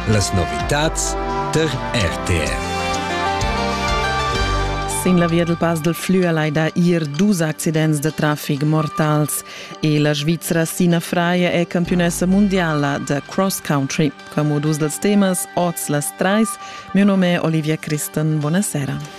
Las novitads tar RTR. Sin la via del Pass del Flü al hai da ir dus accidents da traffic mortals e la Svizra Sina Freie è campionessa mondiala da cross country. Come dus dels temas, oz las trais, mio nome è Olivia Christen. Buonasera.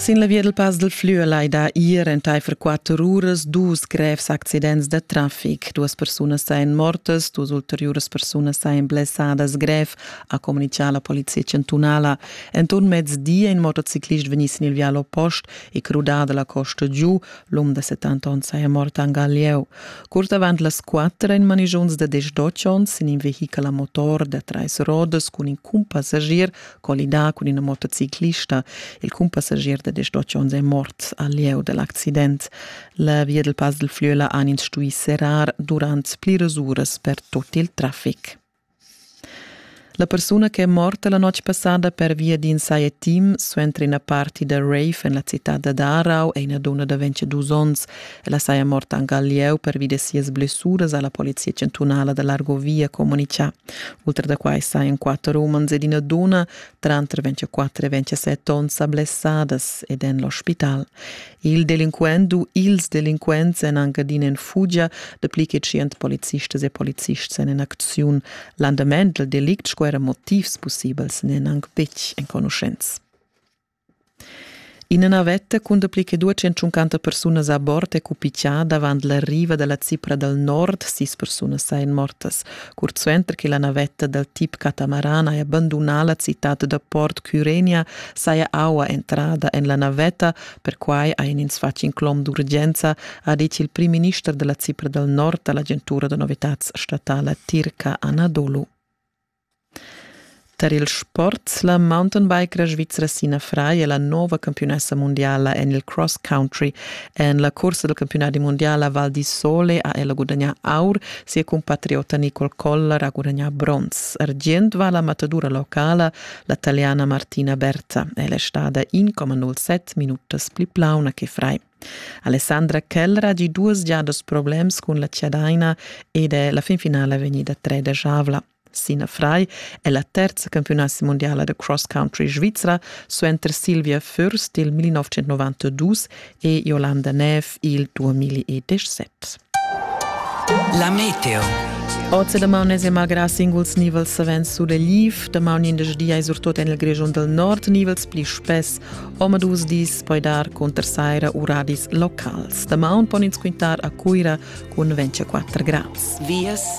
Sin la via dal Pass dal Flüa lai da ir entaifer quatter uras dus grevs accidents da trafic. Duas persunas sain mortas, dus ulteriuras persunas sain blessadas grev, ha comunicà la polizia chantunala. Enturn mezdi è in motociclist vegni sin il vial oppost e crudà da la costa giu, L'um de 70 onns saja mort anc al lieu. Curt avant las 4 in manigiuns de 18 onns in in vehichel a motor de trais rodas cun in cumpassagier collidà cun ina motociclista. Il cumpassagier de 18 onns è mort al lieu dell'accident. La via del Pas del Flüela han ins stui serrar durant pliras uras per tot il traffic. La persuna che è morta la notg passada pervia d'in saja team suenter ina party da rave en la citad da Darau è ina dunna da 22 onns. Ella saja morta anc al lieu pervi da sias blessuras, ha la polizia chantunala da Largo Via comunicà. Oltre da quai sajan quatter umans ed ina dunna, tranter 24 e 27 onns, blessadas ed en l'ospital. Il delinquent u ils delinquents èn anc adina en fugia, dapli che tschient policistas e polizists èn en acziun. L'andament dal delict sco era motivs pussibels n'èn anc betg enconuschents. Ina navetta cun dapli che 250 persunas a bord è cupigiada avant la riva da la Cipra dal nord. Sis persunas èn mortas. Curt suenter che la navetta dal tip catamarana è bandunà la citad da port Cyrenia, saja aua entrada en la navetta Perquai ha in ins fatg in clom d'urgenza, ha detg il primminister della Cipra dal Nord all'agentura da novitads statala tirca Anadolu. Tar il sport, la mountainbikera svizra Sina Frei è la nova campiunessa mondiala en il cross country. En la corsa del campionati mondiala Val di Sole ha ella gudagnà aur, sia compatriota Nicole Koller ha gudagnà bronz. Argient va la matadura locala La taliana Martina Berza è stada 1,07 minutas pli plauna che frai. Alessandra Kellra di duas giadas problems cun la Ciadaina ed è la finfinala vegnida tredegiavla. Sina Fry è la terza campionassa mondiala de cross country svizra suenter Silvia Fürst il 1992 e Jolanda Neff il 2017. La meteo. Oz da maun es malgrà singuls nivels savens sulegliv, da maun indesch di ais surtot en il Grischun dal nord nivels pli spess, omadus dis poi dar cunter saira u radis locals. Da maun pon ins quintar a Cuira cun 24 grads. Vias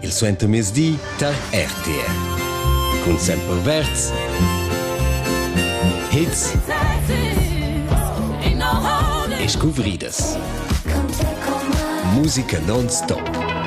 il suentermezdi tar RTR. Cun Semper Verz. Hits e scuvridas. Musica non-stop.